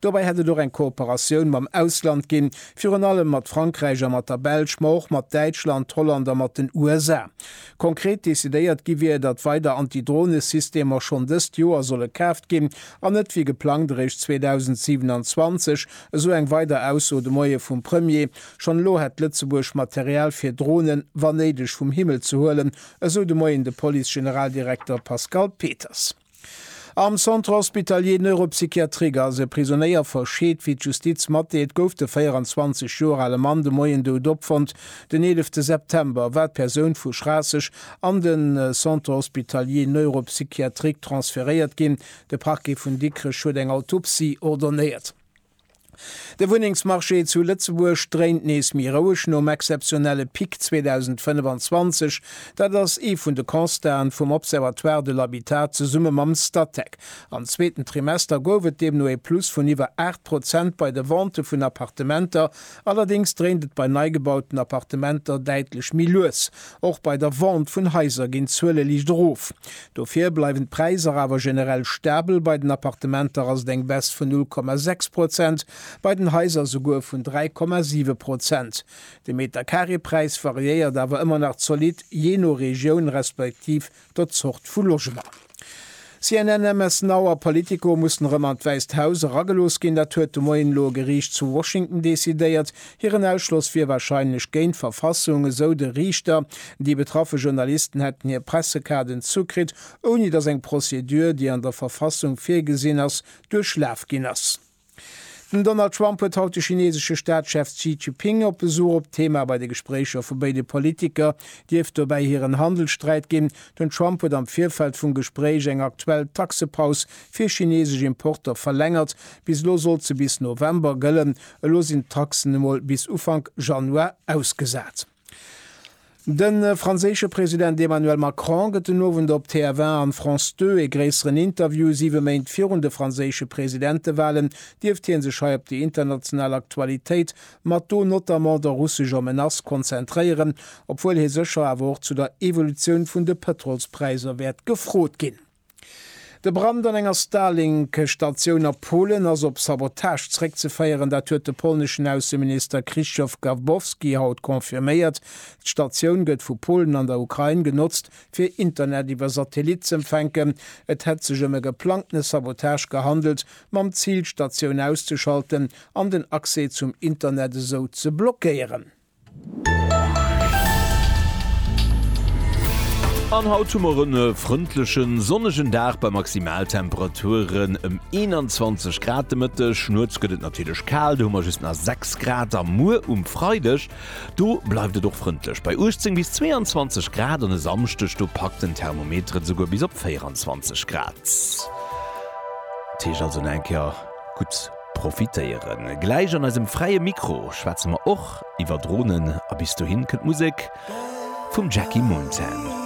Dobäi hätt et och eng Kooperatioun mam Ausland ginn, virun allem mat Frankräich a mat der Belsch, ma och mat Däitschland, Holland a mat den USA. Konkret decidéiert gi wier, datt weider Anti-Drone-Systemer schonn dëst Joer solle kaaft ginn an net wéi geplangt eréischt 2027, esou eng weider Ausso de Moie vum Premier. Schonn elo hätt Lëtzebuerg Material fir Dronen, wann néideg, vum Himmel ze huelen, esou de Moien de Police-Generaldirekter Pascal Peters. Am Centre hospitalier neuropsychiatrique ass e Prisonéier verscheet. Wéi d'Justiz matdeelt, gouf de 24 Joer ale Mann de Moien dout opfonnt, den 11 September war d'Persoun vu Schraasseg an de Centre hospitalier neuropsychiatrique transferéiert ginn. De Parquet vun Dikrech huet eng Autopsie ordonéiert. De Wunnengsmarché zu Lëtzebuerg dréint nees méi roueg nom exzeptionelle Pic 2025. Dat ass ee vun de Constaten vum Observatoire de l'habitat zesumme mam Statec. Am zweeten Trimester gouf et deemno ee Plus vun iwwer 8 Prozent bei de Ventë vun Appartementer Allerdéngs dréint et bei neigebauten Appartementer däitlech méi lues. Och bei der Vente vun Haiser ginn d'Zuele liicht erof. Dofir bleiwen d'Präisser awer generell stabel, bei den Appartementer ass et eng Baisse vun 0,6 Prozent, bei den Haiser souguer vun 3,7 Prozent. De Meterkareepräis variéiert awer ëmmer nach zolidd, jee no Regioun respektiv der Zort vu Logement. CNN, MS Now a Politico mussen erëm an d'Wäisst Haus eragelooss ginn. Dat huet de Moien elo e Geriicht zu Washington decidéiert. Hiren Ausschloss wier warscheinlech géint d'Verfassung, esou de Riichter. Déi betraffe Journalisten hätten hir Pressekaarden zukritt, ouni datt eng Prozedur, déi an der Verfassung virgesinn ass, duerchlaf ginn ass. Den Donald Trump huet haut de chinesesche Staatschef Xi Jiping op Besuch. Op d'Thema bei de Gespréicher vu béide Politiker dierft dobäi hiren Handelssträit ginn. Den Trump huet am Virfeld vum Gespréich eng aktuell Taxepaus fir chinesesch Importer verlängert. Bis elo sollt se bis November gëllen, elo sinn d'Taxen emol bis Ufank Januar ausgesat. De franséische President Emmanuel Macron gëtt den Owend op TF1 an France 2 ee gréisseren Interview. Siwe Méint virun de franséische Presidentewalen dierft hie sech hei op déi international Aktualitéit mat do notamment der russescher Menace konzentréieren, obwuel hie sécher awer och zu der Evolutioun vun de Pëtrolspräisser wäert gefrot ginn. De Brand an enger Starlink-Statioun a Polen ass op Sabotage zeréckzeféieren. Dat huet de polneschen Ausseminister Krzysztof Gawbowski haut confirméiert. D'Statioun gëtt vu Polen an der Ukrain genotzt, fir Internet iwwer Satellit z'empfänken. Et hätt sech ëm e geplangtene Sabotage gehandelt, mam Zil, d'Statioun auszeschalten an den Accès zum Internet esou ze blockéieren. An haut hu mer en frëndlechen, sonnegen Dag bei Maximaltemperaturen ëm 21 Grad de Mëtteg. Nuets gëtt et natierlech kal, do hu mer just nach 6 Grad. A muer um Freideg, do bleift et och frëndlech bei 18 bis 22 Grad. An e Samschdeg, do packt den Thermometer et esouguer bis op 24 Grad. Dat heescht also nach eng Kéier gutt. Profitéieren. Gläich an eisem fräie Mikro schwätze mer och iwwer Dronen a bis dohin kënnt Musek vum Jackie Mountain.